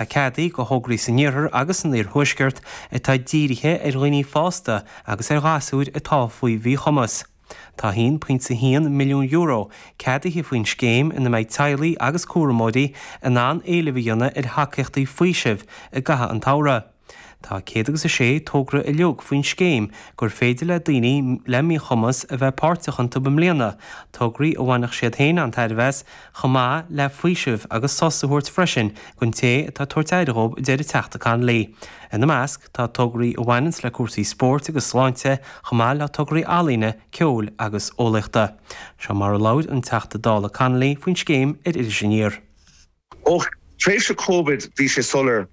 atá ceadaithe do thograí san Iarthar agus san Iarthuaisceart atá dírithe ar dhaoine fásta agus ar ghasúir atá faoi mhíchumas. Tá €1.1 milliún ceadaithe faoin scéim ina mbeidh teaghlaigh agus cúramóirí in ann éileamh a dhéanamh ar thacaíochtaí faoisimh i gcaitheamh an tsamhraidh. Tá céad agus a sé togra uilig faoin scéim gur féidir le daoine le míchumas a bheith páirteach iontu i mbliana, tograí a bhainfeadh siad féin an-tairbhe as, chomh maith le faoiseamh agus sos a thabhairt freisin don té atá ag tabhairt aire dhóibh a deir an Teachta Connolly. Ina measc tá tograí a bhaineanns le cúrsaí spóirt agus sláinte chomh maith le tograí ealaíne, ceoil agus eolaíochta. Seo mar a labhair an Teachta Dála Connolly faoin scéim ar Iris Aniar. Ó thréimhse Covid bhí sé soiléir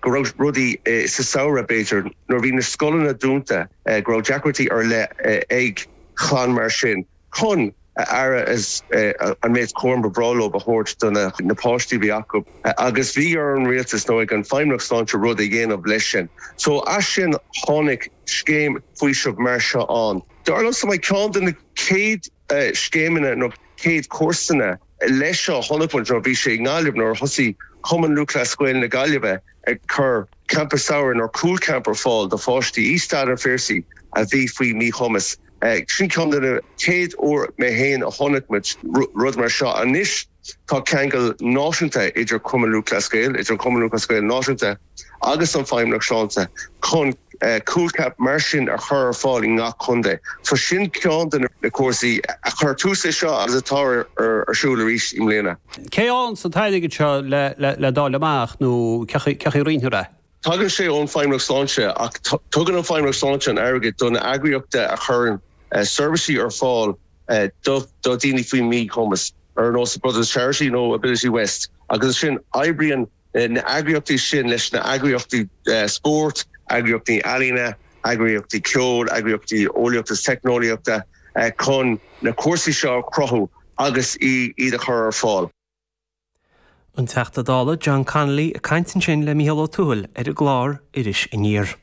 go raibh rudaí, sa samhradh b'fhéidir nuair a bhí na scoileanna dúnta, go raibh deacrachtaí ar leith ag chlann mar sin. chun aire is an méid cúraim ba bhreá leo a thabhairt do na páistí a bhí acu agus bhí ar an rialtas nó ag an Feidhmeannacht Sláinte rud a dhéanamh leis sin. So as sin tháinig scéim faoisimh mar seo ann. Dar liomsa, mar ceann de na céad scéimeanna nó céad cúrsanna. leis seo a chonaic muid nuair a bhí sé i nGaillimh nuair a thosaigh Cumann Lúthchleas Gael na Gaillimhe ag cur Campa Samhraidh nó Cúl Camp ar fáil do pháistí i Staid an Phiarsaigh a bhí faoi mhíchumas. Sin ceann de na chéad uair mé féin a chonaic muid rud mar seo. Anois tá ceangal náisiúnta idir Cumann Lúthchleas Gael, idir an Cumann Lúthchleas Gael Náisiúnta, agus an Feidhmeannacht Sláinte chun Cúl Camp mar sin a chur ar fáil i ngach contae. So sin ceann de na cúrsaí a chuir tús le seo agus atá ar siúl arís i mbliana. Cén nós atá an t-airgead seo le dáil amach nó cén chaoi a roinnfear é? Tagann sé ón Feidhmeannacht Sláinte ach tugann an Feidhmeannacht Sláinte an airgead do na eagraíochta a chuireann seirbhísí ar fáil do dhaoine faoi mhíchumas ar nós Brothers of Charity nó Ability West agus ansin oibríonn na heagraíochtaí sin leis na heagraíochtaí spóirt, eagraíochtaí ealaíne, eagraíochtaí ceoil, eagraíochtaí eolaíochta is teicneolaíochta chun na cúrsaí seo a chruthú agus iad a chur ar fáil. An Teachta Dála John Connolly ag caint ansin le Mícheál Ó Tuathail ar an gclár Iris Aniar.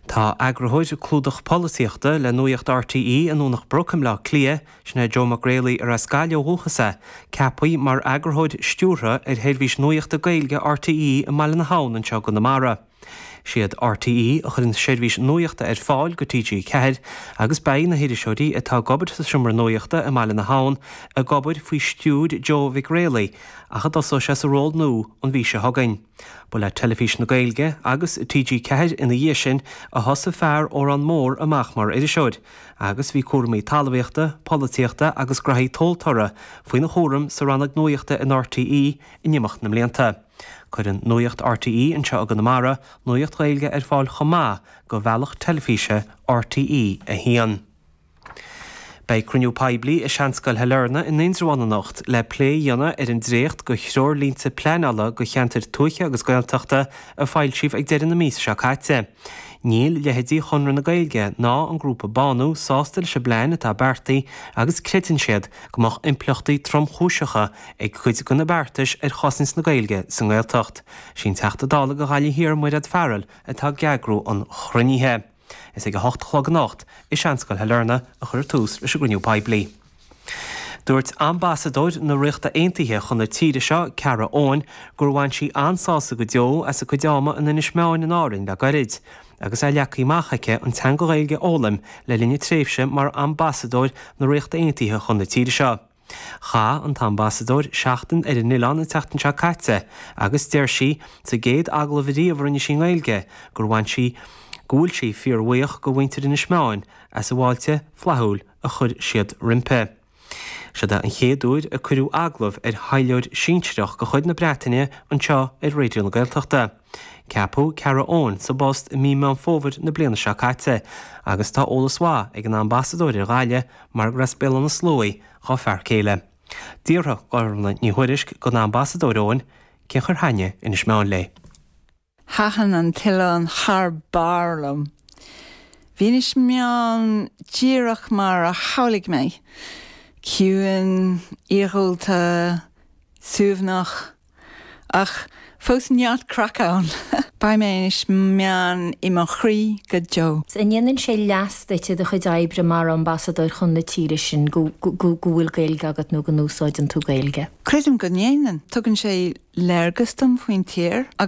Tá Eagarthóir Clúdach Polaitíochta le Nuaíocht RTÉ i nDomhnach Broc i mBleá Cliath, sin é Joe Mag Raollaigh arb as Gaillimh ó dhúchas é, ceaptha mar Eagarthóir Stiúrtha ar sheirbhís nuaíochta Gaeilge RTÉ i mBaile na hAbhann anseo i gConamara. Is iad RTÉ a chuireann seirbhís nuaíochta ar fáil do TG4 agus beidh na hiriseoirí atá ag obair sa Seomra Nuaíochta i mBaile na hAbhann ag obair faoi stiúir Joe Mhig Raollaigh ach a dtosóidh sé sa ról nua an mhí seo chugainn. Ba le Teilifís na Gaeilge agus TG4 ina dhiaidh sin a thosaigh fear Órán Mór amach mar iriseoir, agus bhí cúramaí talmhaíochta, polaitíochta agus graithí tomhaltóra faoina chúram sa rannóg nuaíochta in RTÉ in imeacht na mblianta. Cuireann Nuaíocht RTÉ anseo i gConamara nuaíocht Ghaeilge ar fáil chomh maith do bhealach teilifíse RTÉ1. Beidh cruinniú poiblí i Seanscoil Shailearna i nIndreabhán anocht le plé a dhéanamh ar an dréacht de threoirlínte pleanála do cheantair tuaithe agus Gaeltachta a foilsíodh ag deireadh na míosa seo caite. Níl leitheidí Chonradh na Gaeilge ná an grúpa Bánú sásta leis an bplean atá beartaithe agus creideann siad go mbeadh impleachtaí tromchúiseacha ag cuid de na beartais ar chosaint na Gaeilge sa nGaeltacht. Is í an Teachta Dála do Ghaillimh Thiar Mairéad Farrell atá ag eagrú an chruinnithe. Is ag a hocht a chlog anocht i Seanscoil Shailearna a chuirfear tús leis an gcruinniú poiblí. Dúirt ambasadóir na Ríochta Aontaithe chun na tíre seo, Kara Owen, gur bhain sí an-sásamh go deo as a cuid ama in Inis Meáin in Árainn le gairid, agus é leagtha amach aici an teanga Ghaeilge a fhoghlaim le linn a tréimhse mar ambasadóir na Ríochta Aontaithe chun na tíre seo. Chaith an tAmbasadóir seachtain ar an oileán an tseachtain seo caite agus deir sí, sa gcéad agallamh ariamh a rinne sí i nGaeilge, gur bhain sí go bhfuil sí fíorbhuíoch de mhuintir Inis Meáin as an bhfáilte flaithiúil a chuir siad roimpi. Siod é an chéad uair a cuireadh agallamh ar thaidhleoir sinsearach de chuid na Breataine anseo ar Raidió na Gaeltachta. Ceapadh Kara Owen sa bpost i mí Meán Fómhair na bliana seo caite agus tá eolas mhaith ag an Ambasadóir ar Ghaillimh, mar gur as Béal Átha na Sluaighe dhá fear céile. D'fhiafraigh Gormfhlaith Ní Thuairisg den Ambasadóir Owen cén chaoi ar thaitin Inis Meáin léi. Thaitin an t-oileán thar barr liom. Bhí Inis Meáin díreach mar a shamhlaigh mé, ciúin, iargúlta, suaimhneach. Ach fós neart craic ann! Beidh mé Inis Meáin i mo chroí go deo. An ndéanann sé leas duit i do chuid oibre mar ambasadóir chun na tíre sin go bhfuil Gaeilge agat nó go n-úsáideann tú Gaeilge? Creidim go ndéanann. Tugann sé léargas dom faoin tír agus.